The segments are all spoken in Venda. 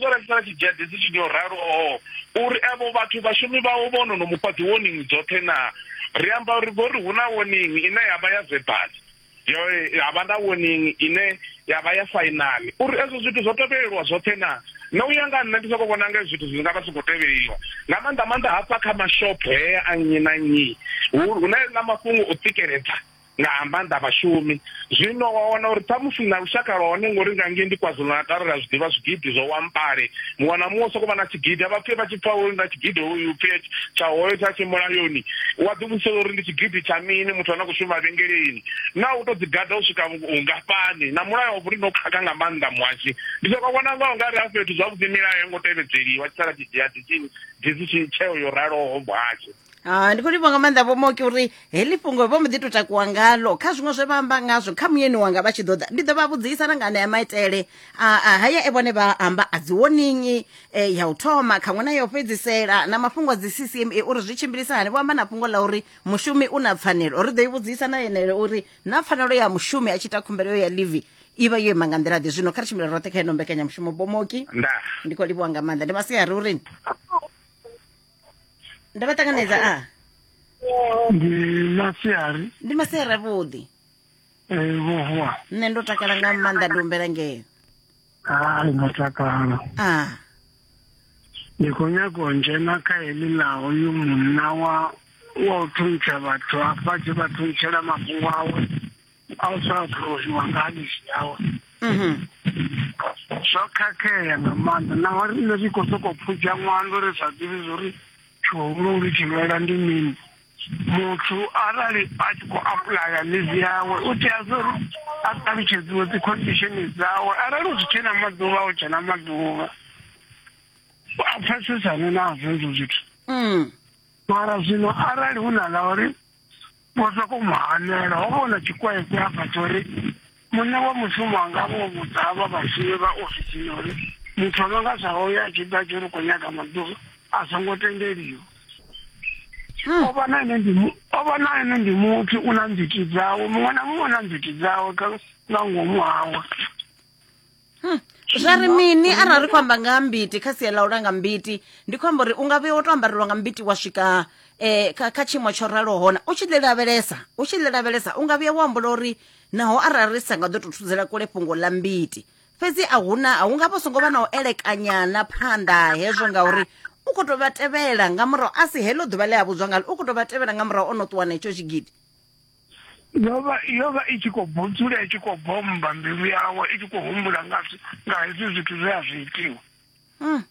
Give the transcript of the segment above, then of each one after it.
ḓo rengisa tshidzhedze dzi tshi ḓo ralo oo uri avho vhathu vhashumi vhawo vho no no mufha dzi warning dzoṱhe na ri amba uri vho ri hu na warning ine ya vha ya verbal yo ya vha na warning ine ya vha ya final uri ezwo zwithu zwo tevhelelwa zwoṱhe na na u ya nga nṋe ndi soko vhona nga zwithu zwi nga vha soko tevheliwa nga maanḓa maanḓa hafha kha mashopho hea a nnyi na nnyi hu na mafhungo o tsikeledza nga ha maanḓa vhashumi zwino wa wana uri ṱhamusi na lushaka lwa hone ngori nga ngei ndi kwazulu-natal ri a zwi ḓivha zwigidi zwo wampale muṅwe na muṅwe soko vha na tshigidi a vha pfhe vha tshi pfa uri na tshigidi hoyu pfhe tsha hoyo tsha tshi mulayoni wa ḓi vhudzisa uri ndi tshigidi tsha mini muthu ane a khou shuma vhengeleni na u tou ḓigada u swika vhungafhani na mulayo wa vhuri no khakha nga maanḓa muhashi ndi soko vhona ngao nga ri a fhethu zwavhuḓi milayo yo ngo tevhedzeliwa tshi sala tshi dzhia tshitshini dzi tshi tsheo yo raloho muhashi Ah, ndi khou livhuwa nga maanḓa vho moki uri heḽi fhungo vho mbo ḓi tou takuwa ngalo kha zwiṅwe zwe vha amba ngazwo kha muyeni wanga vha tshi ḓo ḓa ndi ḓo vha vhudzisa na nga anea maitele a a haya e vhone vha amba a dzi woningi eh, ya u thoma khaṅwe na ya u fhedzisela na mafhungo a dzi ccma uri zwi tshimbilisa hani vho amba na fhungo ḽa uri mushumi u na pfanelo ri ḓo i vhudzisa na yenele uri na pfanelo ya mushumi a tshi ita khumbelo yo ya livi i vha yo ima nga nḓila ḓe zwino kha ri tshimbile roṱhe kha ino mbekanyamushumo bomoki nda ndi khou livhuwa nga maanḓa ndi masiari urini ndo vha ṱanganedza a ndi masiari ndi masiari avhuḓi eh, vhohwa nṋe ndo takala nga maanḓa ndi humbela ngeo hai ndo takala a ndi khou nyaga u dzhena kha heḽi ḽa hoyu munna wa wa u thuntsha vhathu afha tshi vha thuntshela mafhungo awe a u tsha phurozhiwa nga ha mishi yawe mhm. zwo khakhea nga maanḓa naho rine ri khou sokou pfudza ṅwando ri sa ḓivhi zwo ri tshihulu ri tshi lwela ndi mini muthu arali a tshi khou apulaya livi yawe u tea zwo ri a ṱalutshedziwe dzi khondisheni dzawe arali u zwi tshena maḓuvha u tshena maḓuvha a pfesesane nazwo ezwo zwithu mm. mara zwino arali hu na ḽa uri Vho sokou mu hanela. Ho vha hu na tshikwekwe hafha tsho ri muṋe wa mushumo a nga vho vhudza havha vhashumi vha ofisini uri muthu a no nga zwa hoyo a tshi ḓa tshi ri khou nyaga maḓuvha a songo tendeliwa o vha na ene ndi mu- o vha na ene ndi muthu u na nzwiti dzawe muṅwe na muṅwe u na nzwiti dzawe kha nga ngomu hawe Hmm. zwa ri mini arali ri khou amba nga ha mbiti kha sia ḽa u langa mbiti ndi khou amba uri u nga vhuya wo to ambarelwa nga mbiti wa swika um kha tshiimo tsho raloho hona u tshi ḽi lavhelesa u tshi ḽi lavhelesa u nga vhuya wa ambola uri naho arali ri sa nga ḓo tou thudzela kule fhungo ḽa mbiti fhedzi a huna a hu nga vha songo vha na u elekanyana phanḓa hezwo ngauri u khou tou vha tevhela nga murahu a si heḽo ḓuvha ḽe a vhudzwa ngalo u khou tou vha tevhela nga murahu o no ṱuwa na hetsho tshigidi yo vha yo vha i tshi khou budzula i tshi khou bommba mbilu yawe i tshi khou humbula nga nga hezwi zwithu zwe a zwi itiwa hmm.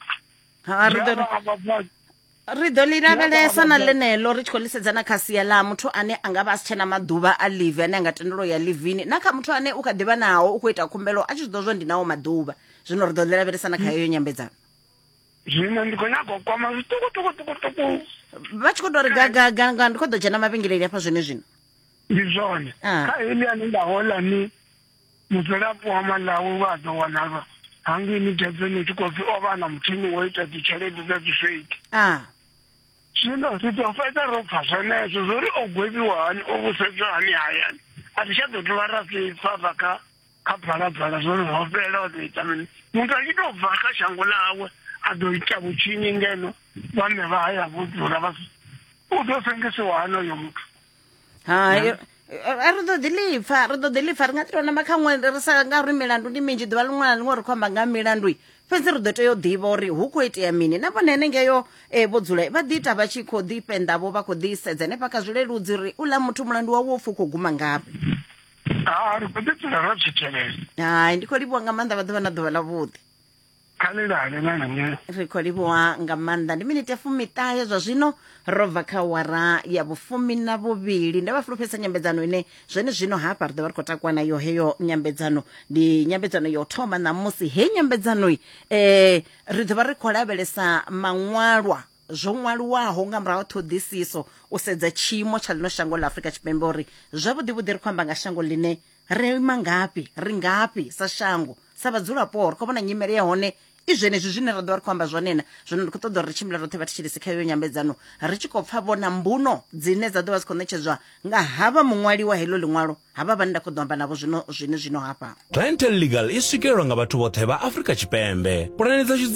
ri ḓo ḽi lavhelesa na ḽeneḽo ri tshi khou ḽisedza na kha sia ḽa muthu ane a nga vha a si tshena maḓuvha a live ane a nga tendelo ya livini na kha muthu ane u kha ḓivha naho u khou ita khumbelo a tshi zwi ḓo zwa ndi nawo maḓuvha zwino ri ḓo ḽi lavhelesa na kha heyo nyambedzano zwino ndi khou nyaga u kwama zwiṱukuṱukuṱukuṱuku vha tshi khou tou ri gagaga nga ndi khou ḓo dzhena mavhengeleli hafha zwone zwino ndi zwone ah. kha heli ane nda hola ni mudzulapo wa malawi wa ḓo wanalwa hangei ni dedzeni tshi khou pfi o vha na muthini wo ita dzitshelede dza dzifeiti ah. zwino ri ḓo fhedza ro pfa zwenezwo zwo ri o gwevhiwa hani o vusedzwa hani hayani a ri tsha ḓo dovha ra zwi pfa bva kha kha bvalabvala zwo no hovhela o ḓo ita mini muthu a tshi tou bva kha shango ḽawe a ḓo ita vhutshinyi ngeno vhaṋe vha haya vho dzula vha u ḓo sengisiwa hani oyo muthu hai a ri ḓo ḓi lipfa ri ḓo ḓi lipfa ri nga ḓi tou namba kha ṅwe ri sa nga uri milandu ndi minzhi ḓuvha ḽiṅwe na ḽiṅwe ri khou amba nga milandu fhedzi ri ḓo tea u ḓivha uri hu khou itea mini na vhone henengeyo um eh, vho dzula vha ḓi ita vha tshi khou ḓi fhenḓavho vha khou ḓi sedza henefha kha zwileludzi uri u ḽa muthu mulandu wawe u pfhi u khou guma ngafhi ha ri khou ḓi dzula ro zwi tevhela hai ndi khou livhuwa nga maanḓa vha ḓuvha na ḓuvha ḽavhuḓi khalelale na nṋe ri khou livhuwa nga maanḓa ndi minete fumiṱahe zwa zwino ro bva kha wara ya vhufumi na vhuvhili nda vha fulufhedzisa nyambedzano ine zwene zwino hafha ri ḓo vha ri khou takuwa nayo heyo nyambedzano ndi nyambedzano ya u thoma ṋamusi heyi nyambedzanoi um ri ḓo vha ri khou lavhelesa maṅwalwa zwo ṅwaliwaho nga murahu ha ṱhoḓisiso u sedza tshiimo tsha ḽino shango ḽa Afrika Tshipembe uri zwavhuḓivhuḓi ri khou amba nga shango ḽine ri ima ngafhi ri ngafhi sa shango sa vhadzulapo ri khou vhona nyimele ya hone i zwenezwi zwine ra ḓo vha ri khou amba zwone na zwino ndi khou ṱoḓa uri ri tshimbile roṱhe vhathetshelesi kha iyo nyambedzano ri tshi khou pfa vhona mbuno dzine dza ḓo vha dzi khou ṋetshedzwa nga havha muṅwali wa heḽo ḽiṅwalo havha vhane nda khou ḓo amba navho zwino zwine zwino hafha Rental Legal i swikelelwa nga vhathu vhoṱhe vha Afrika Tshipembe. Pulane dza